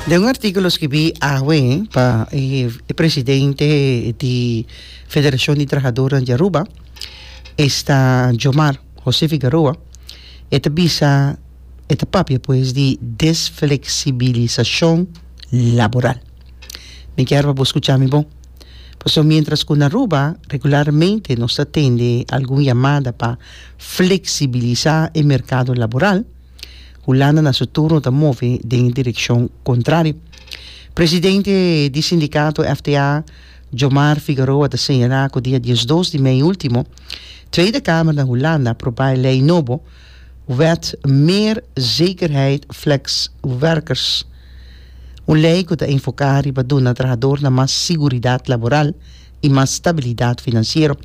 Den un artíkulo skibí awe pa e presidente di Federashon di Trahadornan di Aruba, esta Jomar José Figaroa, e ta bisa, e ta papia pues di desfleksibilisashon laboral. Mi kier pa bo skucha mi bon. Pasobra miéntras ku na Aruba regularmente nos ta tende algun yamada pa fleksibilisá e merkado laboral, Hulanda na su turno ta move den e direkshon kontrario. Presidente di sindikato FTA, Jomar Figueroa ta señalá ku dia diesdos di mei último, Tweede Kamer na Hulanda aprobá e lei nobo, Wet Meer Zekerheid Fleks Werkers, un lei ku ta enfoká riba duna trahadornan mas siguridat laboral i mas stabilidat finansiero.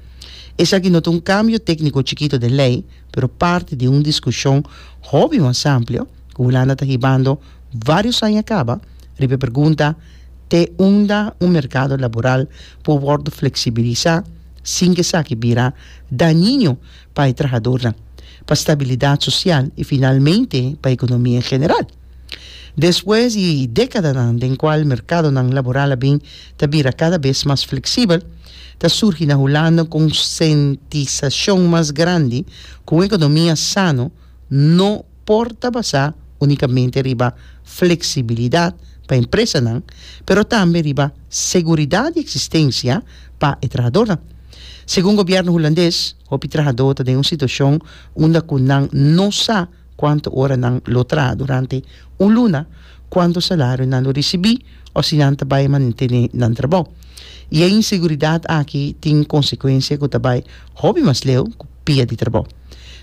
Esaki no ta un kambio tékniko chikito den lei, pero parti di un diskushon hopi mas amplio ku Hulanda ta hibando vários aña kaba riba e pergunta te unda un merkado laboral por wòrdu fleksibilisá sin ku esaki bira dañiño pa e trahadornan, pa stabilidat sosial i finalmente pa ekonomia en general. Despues di dékadanan den kual merkadonan laboral a bin ta bira kada bes mas fleksibel, ta surgi na Hulanda un konsentisashon mas grandi ku un ekonomia sano no por ta basá únikamente riba fleksibilidat pa empresanan, pero tambe riba seguridat di eksistensia pa e trahadónan. Segun gobièrnu hulandes, hopi trahadó ta den un situashon unda ku nan no sa. Cuanto ora nan lo traha durante un luna, cuanto salario nan lo ricibi o si nan ta bay mantene nan trabao. Y e inseguridad aki tin consecuencia cu ta bay hopi mas leu cu pia di trabao.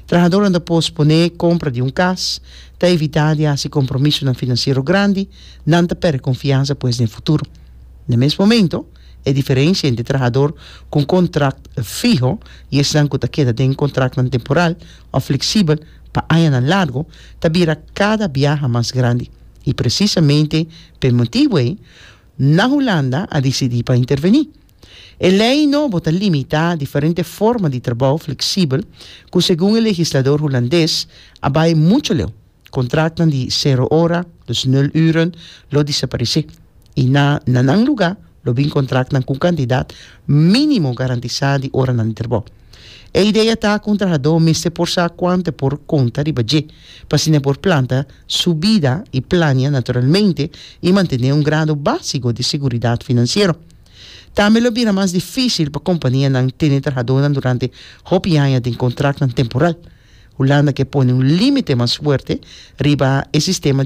Trahadornan ta pospone compra di un cas, ta evita di haci compromisonan financiero grandi, nan ta perde confiansa pues den futuro. Na mes momento, e diferencia entre trahador cu un contract fiho y esnan cu ta keda den contractnan temporal, òf fleksibel pa añanan largu ta bira kada biaha mas grandi i presisamente pa e motibu ei nan Hulanda a disidí pa intervení. E lei nobo ta limitá diferente forma di trabou fleksibel ku segun e legislador hulandes a bai muchu leu. Contratnan di cero hora, dus nul uren, lo desaparesé y na na nan lugá lo bin contratnan cu un cantidad minimo garantisá di horanan di trabou. E idea ta cu un trahadó mester por sa cuanto e por conta riba dje p'asina e por planta su bida y plania naturalmente y mantené un grado básico di seguridad financiero. Tambe lo bira mas difícil pa companianan tene trahadónan durante hopi aña den contratnan temporal. Hulanda ke pone un limite mas fuerte riba e sistema di